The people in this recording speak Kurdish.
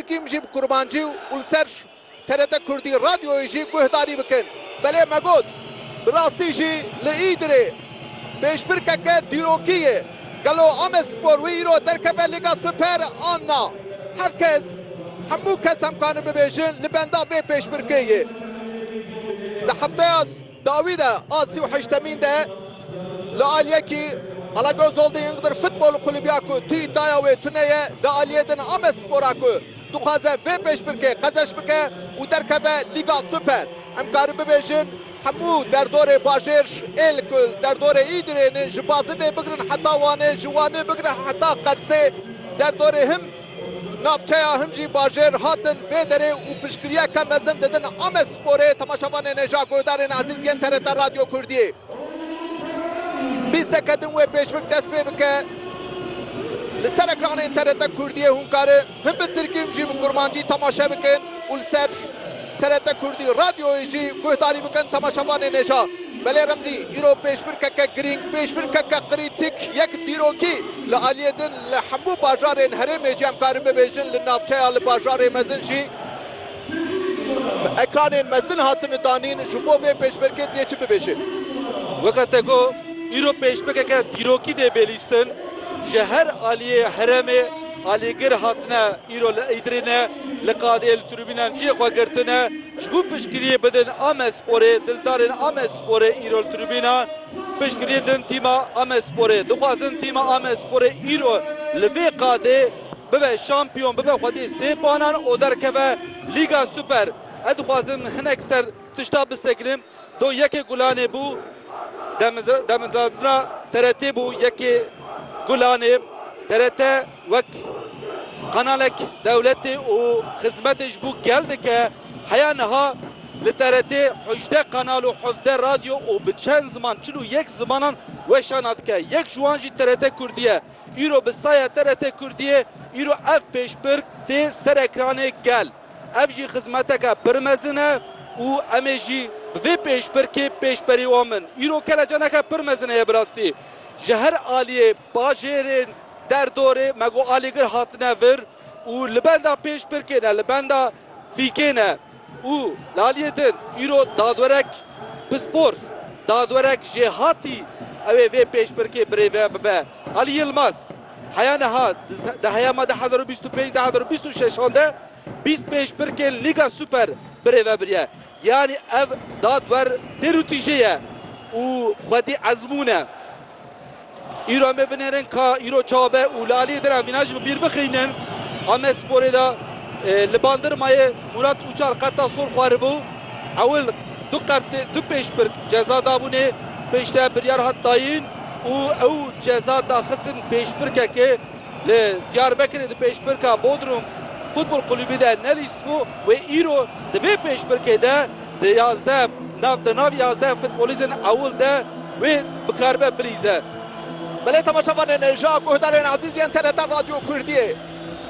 Kîm jî bi kurmancî û li ser TRT Kurdî Radyoyê jî guhdarî bikin. Belê me got, bi rastî jî li Îdirê pêşbirkeke dîrokî ye. Gelo Amedspor wê îro derkeve Lîga Super an na? Her kes, hemû kes em karin bibêjin li benda vê pêşbirkê yê. Di hefteya. Dawî de a sî û heştemîn de li aliyê kî Alagöz Holding Iğdır Futbol Kulübü ya ku tu îdaya wê tune ye li aliyê din ame spora ku dixwaze vê pêşbirkê qezeş bike û derkeve Lîga Super. Em karin bibêjin hemû derdorê bajêr ji êl ku li derdorê Îdirê ne ji Bazidê bigirin heta Wanê, ji Wanê bigirin heta Qersê derdorê him, Navçeya Himcî Bajêr hatin vê derê û piştgiriyeke mezin didin Amesporê, temaşevanê ne ja guhdarên ezîz yên TRT Radyo Kurdiyê. Bîsteke din wê pêşbik dest pê bike li ser ekranên TRT Kurdiyê hûn karin him bi tirkî him jî bi kurmancî temaşe bikin û li ser TRT Kurdî, Radyoyê jî guhdarî bikin temaşevanê nêja. Belê Remzî, îro pêşbirkeke girîng, pêşbirkeke krîtîk, yek dîrokî li aliyê din li hemû bajarên herêmê jî em karin bibêjin li navçeya li bajarê mezin jî ekranên mezin hatine danîn ji bo vê pêşbirkê dê çi bibêje. Weke te got, îro pêşbirkeke dîrokî dê bê lîstin ji her aliyê herêmê. Alîgir hatine îro li Îdirînê li qadê li tribûnan cihê xwe girtine. Ji bo piştgiriyê bidin Amedsporê, dildarên Amedsporê îro li tribûnan piştgiriyê din tîma Amedsporê. Dixwazin tîma Amedsporê îro li vê qadê bibe şampiyon, bibe xwedî sê banan û derkeve Lîga Super. Ez dixwazim hinek ser tişta bisekine. Do yekê gulanê bû demdatina TRT bû yekê gulanê. TRT wek qenalek dewletê û xizmetê ji bo gel dike. Heya niha li TRT hejdeh qenal û hevdeh radyo û bi çend ziman çil û yek zimanan weşana dike. Yek ji wan jî TRT Kurdî ye. Îro bi saya TRT Kurdiyê îro ev pêşbirk tê ser ekranê gel. Ev jî xizmeteke pir mezin e û em ê jî bi vê pêşbirkê pêşberî wan bin. Îro kelecaneke pir mezin heye bi rastî. Ji her aliyê bajêrên der dorê me got alîgir hatine vir û li benda pêşbirkê ne, li benda fîkê ne. Û li aliyê din îro dadwerek pispor, dadwerek jêhatî ew ê vê pêşbirkê birêve bibe. Ali Yilmaz. Heya niha di heya me du hezar û bîst û pênc du hezar û bîst û şeşan de bîst û pênc pirkên Lîga Super birêve biriye. Yanî ev dadwer têr û tîjê ye û xwedî ezmûn e. Îro em ê binêrin ka îro çawa be û li aliyê din em vîna jî bi bîr bixînin. Amedsporê de li Bandirmayê Mûrat Ûçar qerta sol xwaribû. Ewil du qert du pêşpirk ceza dabûnê pêşte biryar hat dayîn. û ew ceza daxistin pêşbirkekê li Diyarbekirê di pêşbirka Bodrum Futbol Kulübî de nelîstibû wê îro di vê pêşbirkê de di yazdeh nav di nav yazdeh futbolîstên ewil de wê bikaribe bilîze. Belê temaşevanê ne ja guhdarên ezîz yên TRT Radyo Kurdiyê.